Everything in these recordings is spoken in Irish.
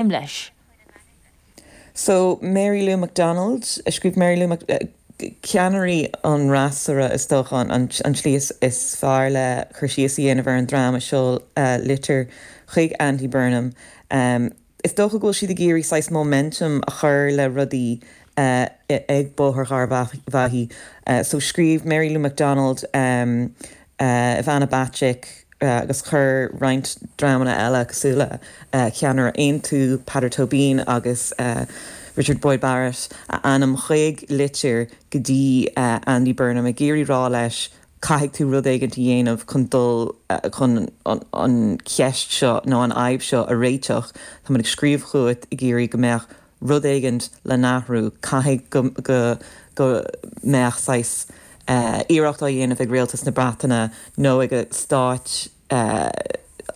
im leis. So, Mary Lou McDonald, a scríobh Mary Lou Mc, ceannairí an fhreasúra, is dócha, an tslí is fearr le cur síos a dhéanamh ar an dream a sheol litir chuig Andy Burnham. Is dócha go bhfuil siad ag iarraidh saghas momentum a chur le rudaí ag Bóthar Gharbhachaidh. So, scríobh Mary Lou McDonald Ivana Bacik agus chuir roinnt dreamanna eile cosúil le ceannaire Aontú, Peadar Tóibín agus Richard Boyd Barrett a n-ainm chuig litir go dtí Andy Burnham ag iarraidh rá leis caithfidh tú rud éigint a dhéanamh chun dul chun an cheist seo nó an fhadhb seo a réiteach. Táimid ag scríobh chugat ag iarraidh go mbeadh rud éigint le hathrú, caithfidh go, go, go mbeadh saghas eh iarracht á dhéanamh ag Rialtas na Breataine nó ag a' Stáit eh,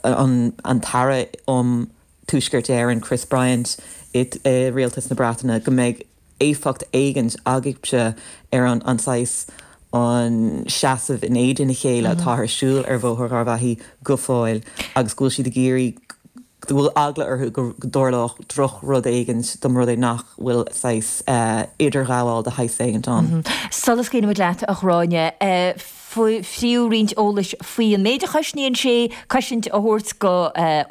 an, an tAire um Tuaisceart Éireann, Chris Bryant i, i Rialtas na Breataine go mbeidh éifeacht éigint agaibhse ar an, an saghas, an seasamh in éadan a chéile atá ar siúl ar Bhóthar Gharbhachaidh go fóill agus go bhfuil siad ag iarraidh, go bhfuil eagla orthu go dtarlódh drochrud éigint más rud é nach bhfuil saghas idirghabháil de shaghas éigint ann. Sula scaoilimid leat, a Ghráinne, fiú roinnt eolais faoi an méid a chosnaíonn sé cosaint a thabhairt do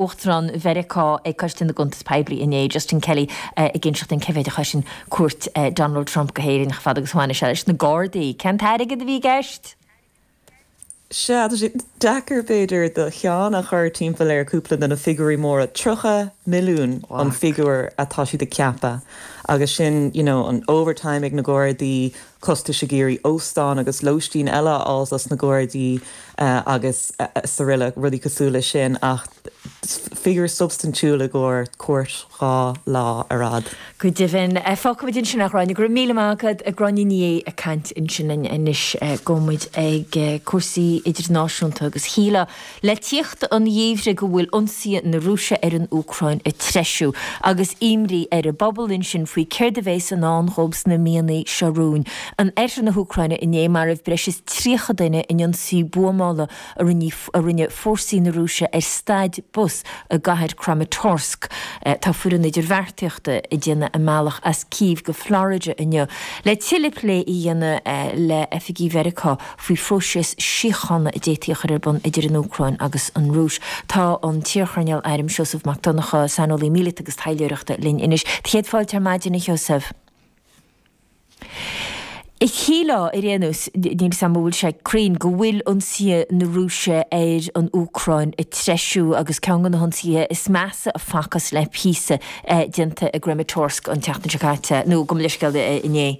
Uachtarán Mheiriceá ag Coiste na gCuntas Poiblí inné, Justin Kelly ag inseacht an cé mhéid a chosain. cuairt Donald Trump go hÉirinn chomh fada agus a bhaineas sé leis na Gardaí. Cén t-airgead a bhí i gceist? Sea, tá sé deacair b'fhéidir do cheann a chur timpeall ar cúpla de na figiúirí móra. Tríocha milliún an figiúir atá siad ag ceapadh agus sin, you know, an overtime ag na Gardaí, costais ag iarraidh óstán agus lóistín eile a fháilt dos na Gardaí agus araile, rudaí cosúil le sin ach figiúr substaintiúil i gcóir cuairt dhá lá ar fad. Go deimhin, fágfaimid ansin a Ghráinne, go raibh míle maith agat, Gráinne Ní Aodha ag caint ansin anois, gabhaimid ag cúrsaí idirnáisiúnta agus shílfeá, Le teacht an gheimhridh go bhfuil ionsaithe na Rúise ar an Úcráin ag treisiú agus imní ar an bpobal ansin faoi céard a bhéas i ndán dóibh sna míonna seo romhainn. In oirthear na hÚcráine inné maraíodh breis is 30 duine in ionsaí buamála a rinne a rinne fórsaí na Rúise ar stad bus i gcathair Kramatorsk. Tá foireann idirbheartaíochta ag déanamh a mbealach as Kyiv go Florida inniu le tuilleadh plé a dhéanamh le oifigigh Mheiriceá faoi phróiseas síochána a d'fhéadfaí a chur ar bun idir an Úcráin agus an Rúis. Tá an t-iarchoirnéal airm Seosamh Mac Donncha, saineolaí míleata agus taidhleoireachta, linn anois. Do chéad fáilte ar maidin, a Sheosamh. Shílfeá, ar aon nós, níl 'fhios a'm an bhfuil sé cruinn, go bhfuil ionsaithe na Rúise ar an Úcráin ag treisiú agus ceann de na hionsaithe is measa a facthas le píosa déanta i gCramatorsk an tseachtain seo caite, nó gabh mo leithscéal inné.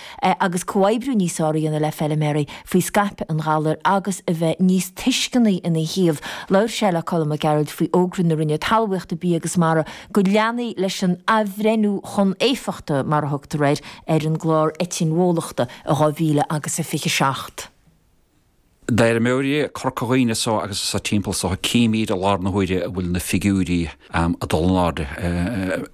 agus comhoibriú níos fearr a dhéanamh le feiliméaraí faoi scaipeadh an ghalair agus a bheith níos tuisceanaí ina thaobh. Labhair sé le Colm Mac Gearailt faoi fhógra na Roinne Talmhaíochta, Bia agus Mara go leanfaí leis an athbhreithniú chun éifeachta, mar a thugtar air, ar an gclár eitinn bhólachta i 2000 agus a 27. D'fheirmeoirí Corca Dhuibhne anso agus sa timpeall is dócha chímid i láthair na huaire go bhfuil na figiúirí ag dul in airde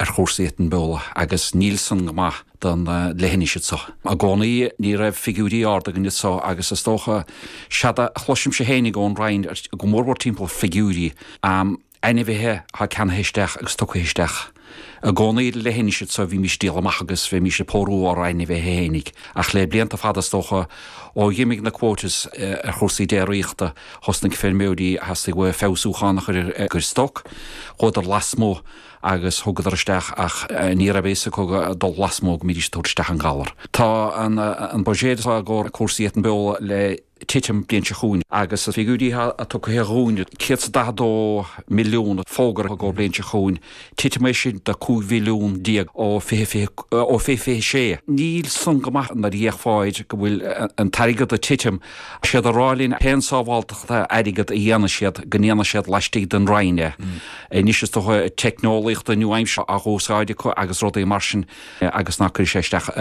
ar chúrsaí eitinn bhólachta agus níl san go maith don leithinis anso. I gcónaí ní raibh figiúirí ard againn anso agus is dócha séard a chloisimse fhéinig ón Roinn go mórmhór timpeall figiúirí ainmhithe atá ceannaithe isteach agus tugtha isteach. I gcónaí sa leithinis so bhímís ag díol amach agus bhímís ag pórú ár ainmhithe féinig. Ach le blianta fada is dócha ó dh'imigh na quotas ar chúrsaí déiríochta thosnaigh feirmeoirí theastaigh uathu feabhsúchán a chur ar stoc. Chuadar lasmuigh agus thugadar isteach ach ní raibh fhios acu ag dul lasmuigh go mbeidís ag tabhairt isteach an galar. Tá an buiséad atá i gcomhair cúrsaí eitinn bhólachta le titim an bhliain seo chugainn. Agus na figiúirí atá tugtha dhúinn, 142 milliún fógartha don bhliain seo chugainn, titim é sin de 15 mhilliún ó fé 2026. Níl san go maith nuair a fhéachfá air go bhfuil an t-airgead ag titim. Tá siad ag rá linn pén sábháilteacht airgead a dhéanfaidh siad go ndéanfaidh siad laistigh den Roinn é. Anois is dócha teicneolaíochta nua-aimseartha á húsáid acu agus rudaí mar sin agus ná cuirfidh sé isteach ar